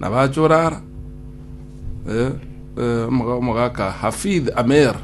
Nabachore ara, omogaka Hafidh Ameir,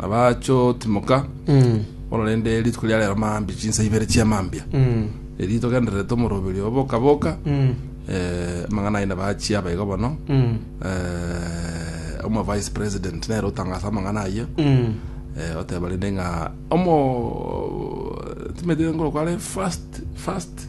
nabachootimoka, bono rende rituko ria rero maambia, chinsa ibere chia maambia, erio togendererete omoroberio oo boka boka, amang'ana aye nabachia aba iga bono, omo vice president nere otangasa amang'ana ayio, oteba rende ng'a omo timanyete ngoro kware first first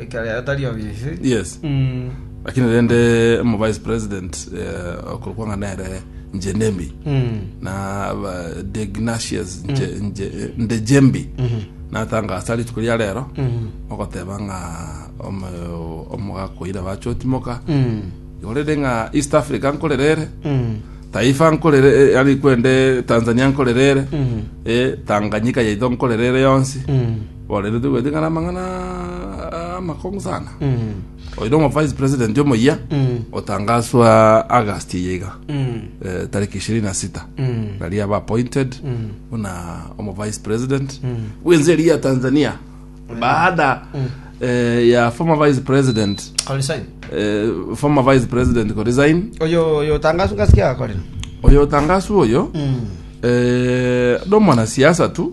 ekero yaye tari obisi yes Mm. lakini rende omo vice president eh, okorokwa ng'a nere njenemi Mm. na ba- degnatius Nje- Nje- ndejembi natanga asa rituko ria rero Mm. ogoteba ng'a omo- omogakoira bachotimoka Mm. orere ng'a east africa nkorerere Mm. taifa nkorere eh, ari kwende tanzania nkorerere Mm. eh, tanganyika yaito nkorerere yonsi Mm. Orerete gwetigana amang'ana amakong'u sana. Oire omo vice president omoyia otangaswa August eye iga. Eh, tariki ishirini na sita. Nari aba appointed buna omo vice president. Bwense eri ya Tanzania. Baada eh, ya former vice president Korisaini. eh, former vice president Korizain Oyo oyo tangasu ngasikia akorera. oyo tangasu oyo eh, no mwanasiasa tu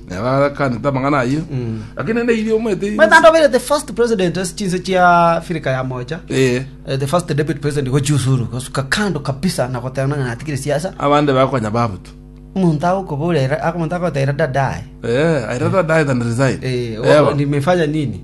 Nabo agakanete amang'ana ayio. Lakini naende erio omanyete erio- Mwenye ndobeire the first president ase chinse chia Africa ya mocha. Eh, Eh, the first deputy president gochiusuru gosuka kando kabisa na goteba ng'a natigire siasa abande bakonya babutu. omonto agokoborera omonto agotaira dadaye Eh, I rather die than resign. Eh, Ewa. nimefanya nini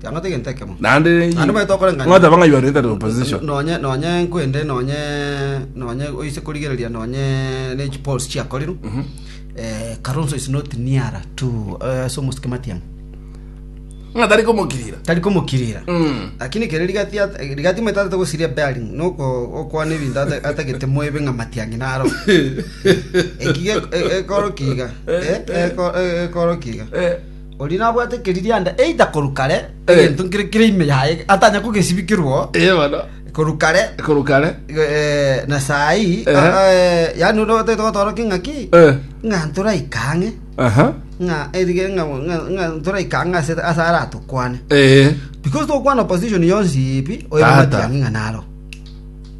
Tiang'ata egento ekemo. Naende Naende baito okorengania. ng'oteba ng'a you are either opposition. nonye nonye nkwende nonye nonye oise korigereria nonye ne chi polls chiakorire eh, Kalonzo is not near to eh, ase omosike Matiang'i Ng'a tari komokirira. tari komokirira Mm. lakini kere rigati at- eh, rigati moita atate gosiria bearing noko okwana ebinto ata- atagete moebe ng'a Matiang'i naro ekiga ekoro kiga Eh, ekoro kiga Eh, Oria nabwate ekeririanda either korwa kare, Eh. egento nkere kere ime yaye, atanya kogesibikirwa oo, Ee bono. korwa kare, Korwa kare. eh, na saa hii, Ehe. ah, eh, yaani ore otagete gotoroka ing'aki, Eh. ng'a ntoraika ang'e, Aha. ng'a erige ng'a ng'a- ng'a ntoraika ang'e ase ase aratukwane. Ee. Because tokwana opposition yonsi ipi, oyo Tata. matiang'i ng'a naro.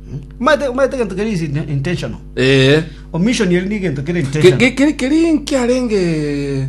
Hmm? Omanyete omanyete egento kere is in- intentional. Ee. Omission eri ni egento kere Ke- intentional. ke- keri- keri nkiarenge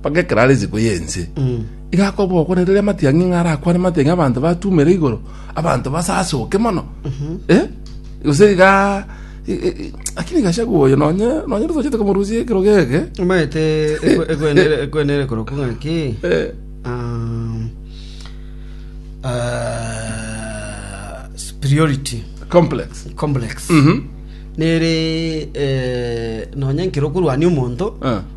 Mpaka ekero are isiko y'ense, iga akoba ogokwanera ere amatiang'i ng'a arakwane amatiang'i abanto batumere igoro, abanto basasoke mono. Eh? Gose iga i- i- i- lakini Gachagua oyo nonye nonye totochete komorusia ekerogo eke. omanyete ekwe- ekwenere ekwenere korokwa ng'aki Eh, um, ah, superiority complex. complex Mhm. nere eh, nonye nkero okorwania omonto Ah.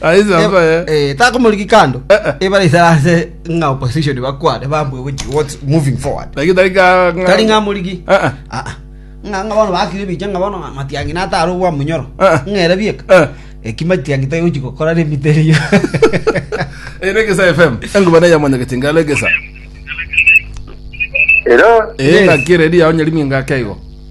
Aise Eba- abaye. eh, takomoriki kando Eh, eh. ebare isara ase ng'a opposition bakwane bambue which what's moving forward Lakini tari ka tari ng'a moriki Eh, eh. Ah, ah. ng'a ng'a bono bakire biche ng'a bono ng'a matiangi natare obwa munyoro Eh, eh. ng'ere bieka Eh. eki matiangi tari gochi gokora remito erio Eh, Regesa FM. Enguba na yamanya kitinga regesa. Hello. Eh, Eh. ngakire ria onye limi ngakeigo.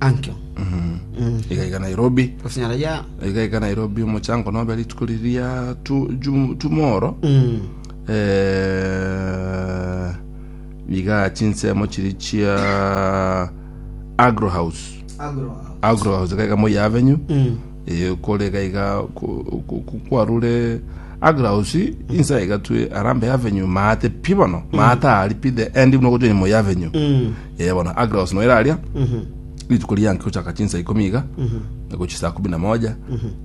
Ankio. iga iga nairobi Gose nyara ya. iga iga nairobi omochango nobe rituko riria tu- jum- tumoro Mm. Eh, iga chinsemo chiri chia agro house Agro. agro house iga iga moi avenue Mm. Eh, kore iga iga ku- ku- ku- kwarure agro house insa iga twe arambe avenue maate pi bono maate ari pi the end buna ogochia moi avenue Mm. Ee, bono Aglaos noira aria rituko rianke gochaka chinsa ikomi iga na gochia saa kumi na moja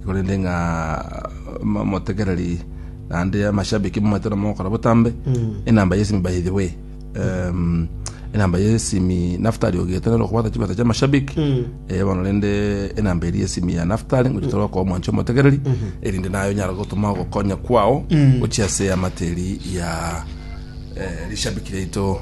korende ng'a mo- motegereri naende amashabiki momanyete na mogokora botambe enamba yesimi by the way Em, enamba yesimi naftali ogete nero okobwata chibesa chia mashabiki Eh, bono rende enamba eri yesimi ya naftali ngochia tore okoa omwancho omotegereri erinde naye onyara gotoma ogokonya kwao gochia ase amateri ya eh, rishabiki riaito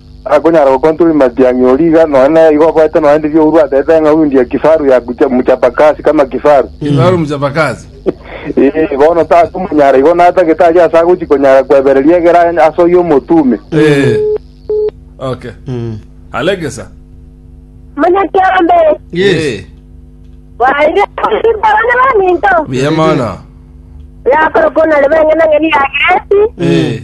Akonyara gokonta orurimi ati, Ang'e ori iga, nonye naigo oboete nonye ndiri ourwa ase eteng'a undi ya kifaru ya Kucha- Muchapakasi kama kifaru. Kifaru Muchapakasi. Ee, bono takomonyara igo natagete tari ase agochi konyara kwebereria egere anye ase oyio omotume. Ee. Okay. Alegesa. Manya kiambe. Yes. Waire abana baminto. Buya mono. Yakoro kona le bengena ngeni ya Gresi. Ee.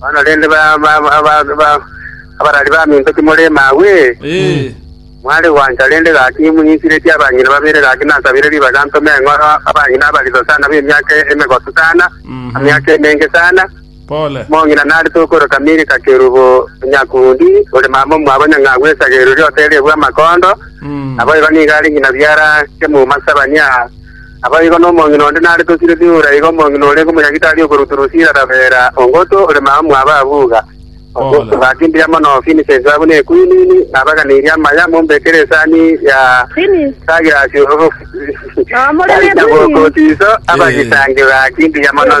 Bono rende, abarari baminto, timori emagwe, ee, mware gwancha. Rende gaki imunyinchiretie abanyene babere, gaki nasabire ribaga ntome eng'oro abanyene abariso sana b'emiaka emegoso sana, emiaka emenge sana. Pole. Omong'ina narete okorwa Kamiri ka Kerubo, Onyakundi, ore mama omwabo nyang'au esage erori oterie bw'amakondo, naboigo nigo are ng'ina biara Kemuma Sabania, Naboigo nomong'ina onde nare tosire Dura, igo omong'ina oria Okomonyagitari okorwa Turusira Rabera, Ongoto, ore mama mw'ababuga. Obakindiria mono Finisensi abwo na Ekuinini, nabaganirie amaya, mombekere esani ya Sagirasi omogokooti iso, abagisange bakindiria mono.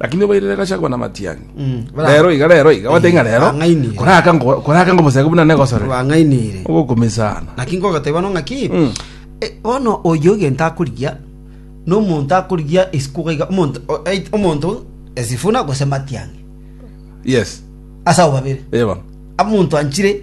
lakini obairere gachagwa na matiang'i Mm, bra- rero iga rero iga wate ng'a rero Bang'ainire. koraka ngo- koraka ngo mosege buna negosore bang'ainire ogokumisana naki ngogateba no ng'aki Mm. e, bono oyo egento akorigia nomonto akorigia esiko gaiga omonto o- ait- omonto esifuna gose matiang'i yes ase abo babere eba amonto anchire